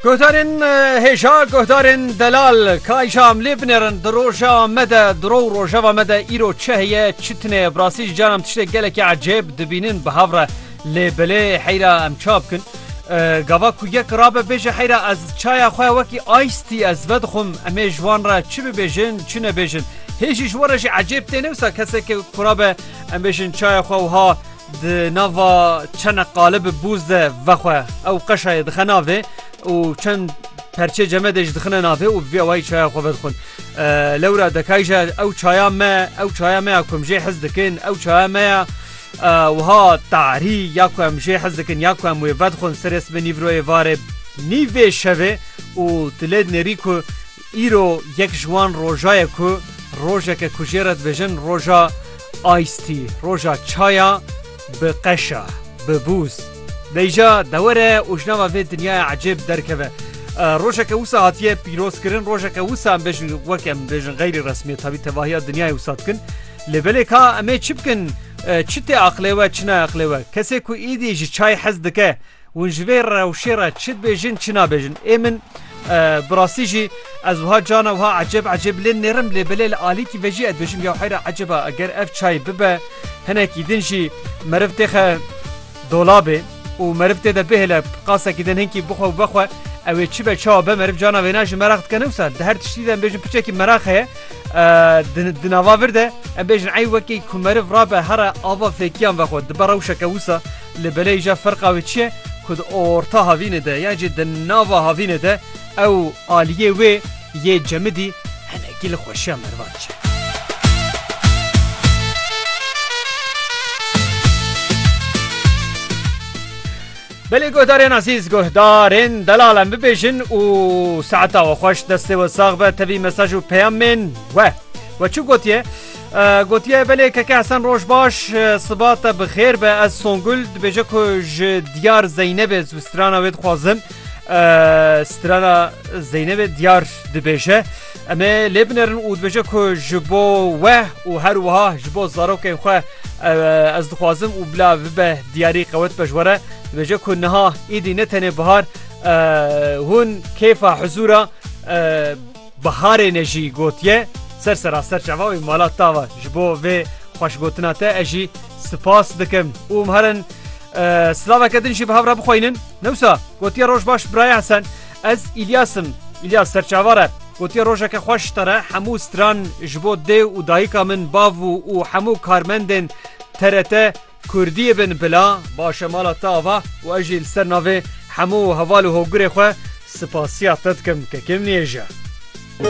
Guhdarên hêja guhdarên delal kayşa em lê binêrin di roja me de diro û rojeva me de îro çi heye çi tune bi rastî jî caran tiştê gelekî ecêb dibînin bi hev re lê bilê heyra em ça bikin gava ku yek rabe bêje heyra ez çaya xwe wekî ice tî ez vedixwim em ê ji wan re çi bibêjin çi nebêjin hêjî ji we re jî ecêb têne wisa kesekê kurabe em bêjin çaya xwe wiha Di nava çenek qalib bûz de vexwe ew qeşayê dixe navê û çend perçê cemedê ji dixine navê û vê wayî çaya xwe vedixwin. Lewra dekay je ew çaya me ew çaya me ya ku em jê hez dikin ew çaya me ya wiha tarî ya ku em jê hez dikin ya ku em wê vedixwin serê sibê nîvroyê varê nîvê şevê û tu lê dinêrî ku Îro yek ji wan roja ye ku rojek e ku jê re dibêjin roja Ice Tea, roja çaya bi qeşa, bi bûz. Bêja dewere û ji nava vê dinyaya ecêb derkeve. Rojek e wisa hatiye pîrozkirin, rojek e wisa em dibêjin wek em dibêjin xeyrî resmî tabî tevahiya dinyayê wisa dikin. Lê belê ka em ê çi bikin? Çi tê aqilê we, çi ne aqilê we? Kesê ku êdî ji çayê hez dike, Hûn ji vê rewşê re çi dibêjin çi nabêjin. Ê min bi rastî jî ez wiha cana wiha ecêb ecêb lê nêrim lê belê li alîkî ve jî ez dibêjim ya heyra ecêba eger ev çayê bibe hinekî din jî meriv têxe dolabê û meriv tê de bihêle qasekî din hinkî bixwe û vexwe ew ê çi be çawa be meriv cana wêna jî meraq dike ne wisa di her tiştî de em bêjin piçekî meraq heye di nava vir de em bêjin ey wekî ku meriv rabe here ava fêkiyan vexwe dibe rewşeke wisa Li belê jî ferqa wê çi ye ku di orta havînê de yan jî di nava havînê de ew aliyê wê yê cemidî hinekî li xweşiya merivan diçe. Belê guhdarên azîz guhdarên delal em bibêjin û saeta we xweş destê we sax be tevî mesaj û peyamên we we çi gotiye Gotiye belê keke Hesen roj baş siba te bi xêr be ez Songul dibêje ku ji diyar Zeynebê zu strana wê dixwazim strana Zeynebê diyar dibêje em ê lê binerin û dibêje ku ji bo we û her wiha ji bo zarokên xwe ez dixwazim û bila bibe diyarî qewet pejwere dibêje ku niha êdî ne tenê bihar hûn kêfa hizûra Biharê ne jî gotiye ser seraser çava wî mala tava ji bo vê xweşgotina te ez jî sipas dikim û em herin silaveke din jî bi hev re bixweynin newsa gotiye roj baş birayê hesen ez îlyasim îlyas serçavare gotiye rojeke xweş te re hemû stran ji bo dê û dayika min bav û hemû karmendên TRT Kurdiyê bin bila baş e mala te ava û ez jî li ser navê hemû heval û hogurê xwe sipasiya te dikim ke kêm nêje.